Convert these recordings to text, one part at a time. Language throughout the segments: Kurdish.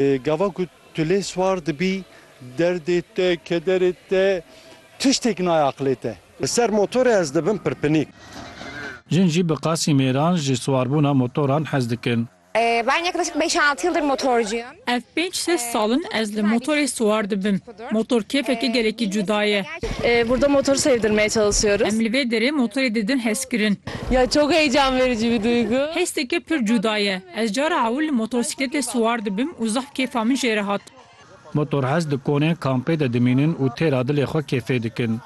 Gava ku tu lê siwar dibî derdê te, kederê te tiştêk nayê aqilê te. Li ser motorê ez dibim pirpinîk. Jin jî bi qasî mêran ji siwarbûna motoran hez dikin. Ben yaklaşık beş-altı yıldır motorcuyum. Ev pênc-şeş sal in ez li motorê siwar dibim. Motor kêfeke gelekî cuda ye. Burada motor sevdirmeye çalışıyoruz. Em li vê derê motorê didin hezkirin. Ya çok heyecan verici bir duygu. Hesteke pir cuda ye. Ez cara ewil li motosikletê siwar dibim û zaf kêfa min jê re hat. Motor hez dikonên kampê de dimînin û têra dilê xwe kêfê dikin.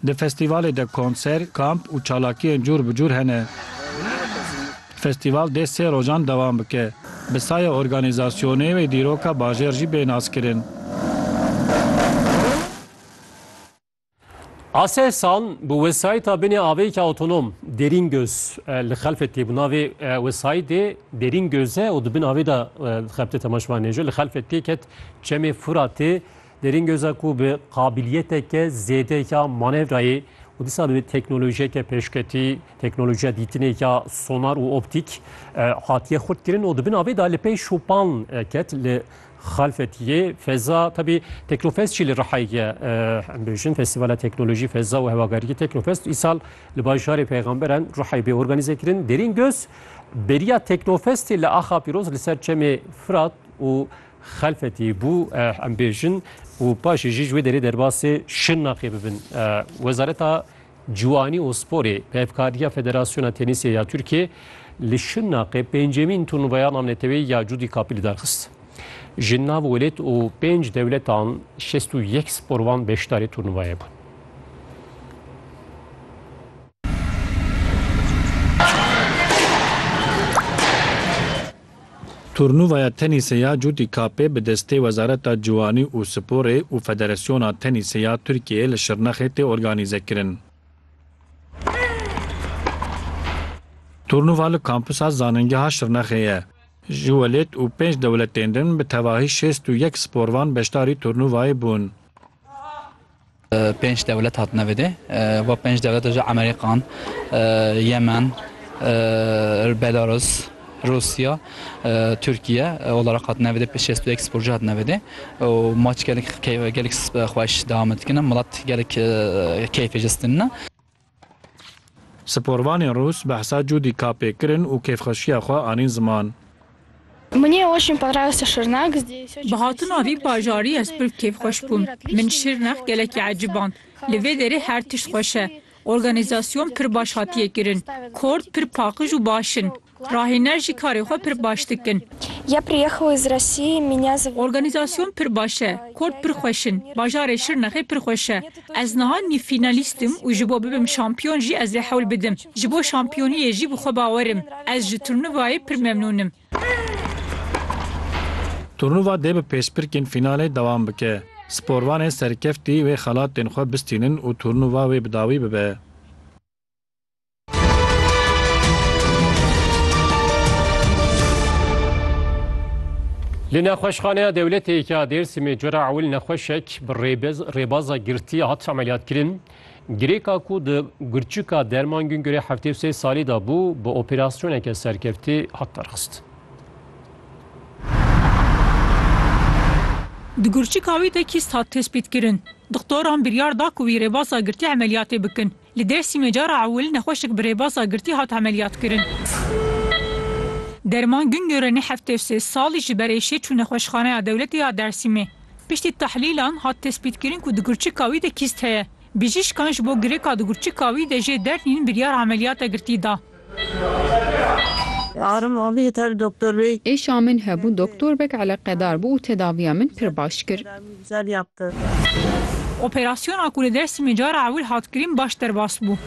Di festîvalê de konser, kamp û çalakiyên cûr bi cûr hene. Festîval dê sê rojan dewam bike. Bi saya organîzasyonê wê dîroka bajêr jî bê naskirin. A seh sal bi wesayîta binê avêyeke awtonom Derîn Göz li xelfê tê. Bi navê wesayîtê Derîn Göz e û di bin avê de xebite temaşvanê jî li xelfê tê ket Çemê Furatê Derîn göza ku bi qabiliyeteke zêde ya manevrayê û dîsa bi teknolojiyeke pêşketî, teknolojiya dîtinê ya sonar û optîk hatiye xurtkirin û di bin avê de li pey şopan ket li xalfetiyê feza tebî Teknofest jî li Rihayê em bêjin Festîvala Teknolojî, Feza û Hewagariyê Teknofest îsal li bajarê Peyxamberan Rihayê bê organîze kirin. Derîn göz beriya Teknofestê li Axapîroz li ser çemê Firat û Xelfetî bû em bêjin û paşê jî ji wê derê derbasê Şirnexê bibin. Wezareta Ciwanî û Sporê bi hevkariya Federasyona Tenîsê ya Tirkiyê li Şirnexê pêncemîn turnuvaya namneteweyî ya Cudî Kapî li dar xist. Ji nav welêt û pênc dewletan şêst û yek sporvan beşdarê turnuvayê bûn. Turnuvaya tenîsê ya Cûtî Kapê bi destê Wezareta Ciwanî û Sporê û Federasyona Tenîsê ya Tirkiyeyê li Şirnexê tê organîzekirin. Turnuva li Kampusa Zanîngeha Şirnexê ye. Ji welêt û pênc dewletên din bi tevahî şêst û yek sporvan beşdarî turnuvayê bûn. Pênc dewlet hatine vêdê. Van pênc dewlete jî Amerîkan, Yemen, Belarus, Rûsya, Tirkiye olaraq hatine vêdê. Pênc şêst û yek sporcu hatine vêdê û maç gelek gelek xweş dewam dikine. Milet gelek keyfê jistinine. Sporvanên rûs behsa Judy Kappê kirin û kêfxweşiya xwe anîn ziman. Bi hatina vî bajarî ez pir kêfxweş bûm. Min Şirnex gelekî eciband. Li vê derê her tişt xweş e. Organîzasyon pir baş hatiye kirin. Kort pir paqij û baş in. Rahîner jî karê xwe pir baş dikin. Ya priyekhal iz Rosiyi minya zivil. Organizasyon pir baş e. Kort pir xweş in. Bajarê Şirnexê pir xweş e. Ez niha nîv fînalîst im û ji bo bibim şampiyon jî ez ê hewl bidim. Ji bo şampiyoniyê jî bi xwe bawer im. Ez ji turnuvayê pir memnûn im. Turnuva dê bi pêşbirkên fînalê dewam bike. Sporvanê serkeftî wê xelatên xwe bistînin û turnuva wê bi dawî bibe. Li nexweşxaneya dewletê yekê ya Dêrsimê cora ewil nexweşek bi rêbaza girtî hat emeliyatkirin. Girêka ku di Gurçika Derman Gungurê heftê û sê salî de bû bi operasyoneke serkeftî hat derxist. Di Gurçika wî de kîst hat tespîtkirin. Dixtoran biryar da ku wî rêbaza girtî emeliyatê bikin. Li Dêrsimê cara ewil nexweşek bi rêbasa girtî hat emeliyatkirin. Derman Güngöre nê heftê sê salî ji ber êşê çû Nexweşxaneya Dewletê ya Dêrsimê. Piştî tehlîlan hat tespîtkirin ku di gurçika wî de kîst heye. Bijîşkan ji bo girêka di gurçika wî de jê dernîn biryar emeliyata girtî da. Êşa min hebû doktorbek eleqedar bû û tedaviya min pir baş kir. Operasyona ku li Dêrsimê cara ewil hat kirîn baş derbas bû.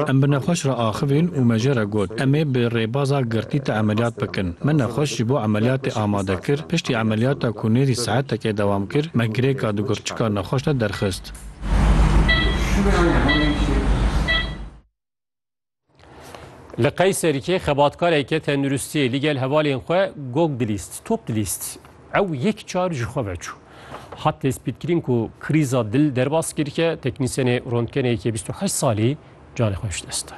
Em bi nexweş re axivîn û me jê re got, Em ê bi rêbaza girtî te emeliyat bikin. Me nexweş ji bo emeliyatê amade kir, piştî emeliyata ku nêzî saetekê dewam kir, me girêka digurtçika nexweş de derxist. Li Qeyserîkê xebatkareke tenduristiyê li gel hevalên xwe gog dilîst, top dilîst. Ew yek çar ji xwe veçû. Hat tespîtkirin ku krîza dil derbas kir ke teknîsyenê rontgenê yekê bîst û heşt salî canê xwe ji dest da.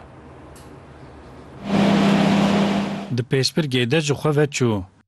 Di pêşbirgê de ji xwe veçû.